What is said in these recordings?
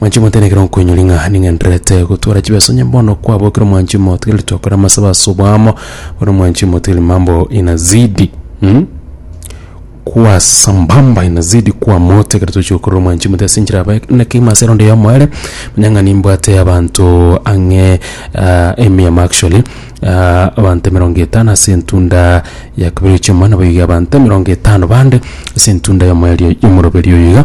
Mwanchi motenekere okoinyori ng'a ning'endererete gotwara chibeso onye bono kwabo ekero mwanchi motigiri tokore amasabo ase obwamo bono mwanchi motigiri mambo inazidi mm? kwa sambamba inazidi kwa moto ekero tochi gokorera omwanchi mote ase enchera abae na keima ase erondo ya omoere manya ng'a nimbwate abanto ang'e ah, emiamo actually ah, abanto emerongo etano ase entunda ya kabere chiomana boiga abanto emerongo etano bande ase entunda ya omoerio- ya omoroberi oyo iga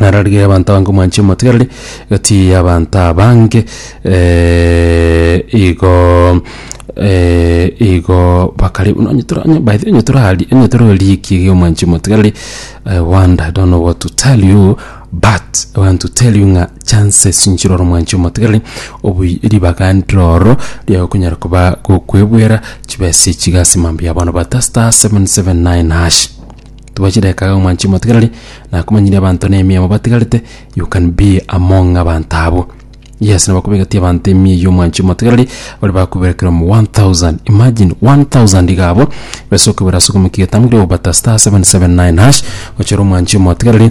Naro rigiya abanto abange omwanche omotigareri egati y'abanto abange igo igo bakare buna onye tore onye by the way onye tore aria onye tore rikia erio omwanchi omotigareri I wonder I don't know what to tell you but I want to tell you ng'a chances nchire ore omwanchi omotigareri oboi ribaga ndire ororo riaye okonyara koba gokwebwera chibesa echi iga ase mambia bono but star seven seven nine hash. Tobua chidakika iga omwanche omotigareri nakomanyirie abanto na emiya mobatigarete you can be among abanto abwo. Yes nabo kobegetie abanto emiya eywo omwanche omotigareri baria bakobera kera omo one thousand imagine one thousand iga abwo besa okobera ase okomokia egetambe ekeria okobata star seven seven nine hash gochera omwanche omotigareri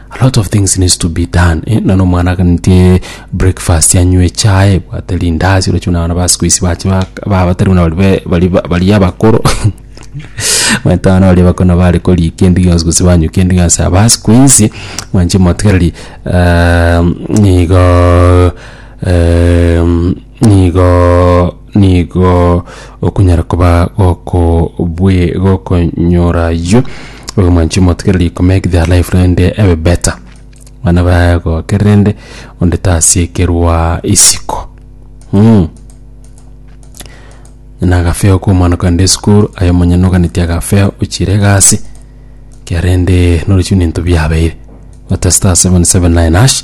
A lot of things needs to be done eh, nano omwana agantie breakfast anywe echae bwate rindazi orochi buna abana ba siku isi bache bak- ba- batari buna bari be- bari ba- bari abakoro manyete abana baria bakona bare koria kende gionsi gose banywa kende gionsi aba siku isi mwanche motigereri ehm, nigo ehm, nigo nigo okunyara koba gokobwe- gokonyora ayio oyo mwanchi omotegereri to make their life rende ebe better bana baye goke rende onde tasiekerwa isiko mm. na agafeo ka omwana kogenda esukuru aye omonyene oganetie agafeo ochire egasi ekerende norochio nento biabeire gotesta 779 hash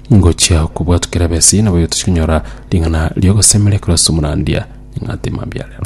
Ngochia kobwatu kera besi, naboigo tochikonyora ring'ana riogosemeria korwa ase omorandia, ing'ate mambia rero.